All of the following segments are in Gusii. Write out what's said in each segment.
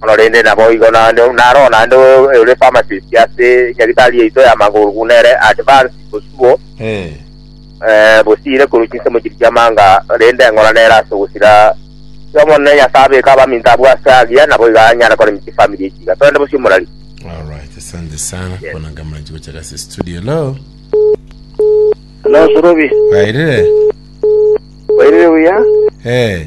Korende naboigo naende naro naende ore pharmacist ase nyagitari yaito ya magoro buna ere advanced bosio bosiire korwa chinsemo chiria chi'amanga, rende eng'ora nere ase ogosira ki Omonene Nyasae abeke abaminto abwo ase agiya, naboigo anyare koremia chifamiri echi iga. Torende bosio morari. Alright, asante sana Yes. kona kama nchi kuchaka si studio hello Hello, Surubi. wairire Wairire buya? eh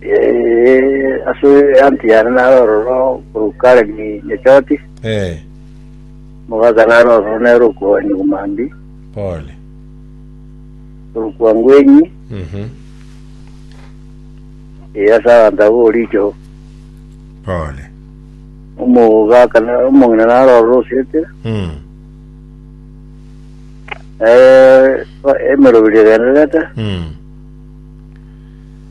Eh, ase eanti yane nare ororo korwa Karemi Nyechoti, Eh, mogaka nare ororo nere okwa Nyugumambi, pole. korwa kwa Ngwenyi, Mhm. eh, ase abanto abo Oricho, Pole. omogaka na- omong'ina nare ororo Osete, Mm. eh, emeroberio egendererete, Mm.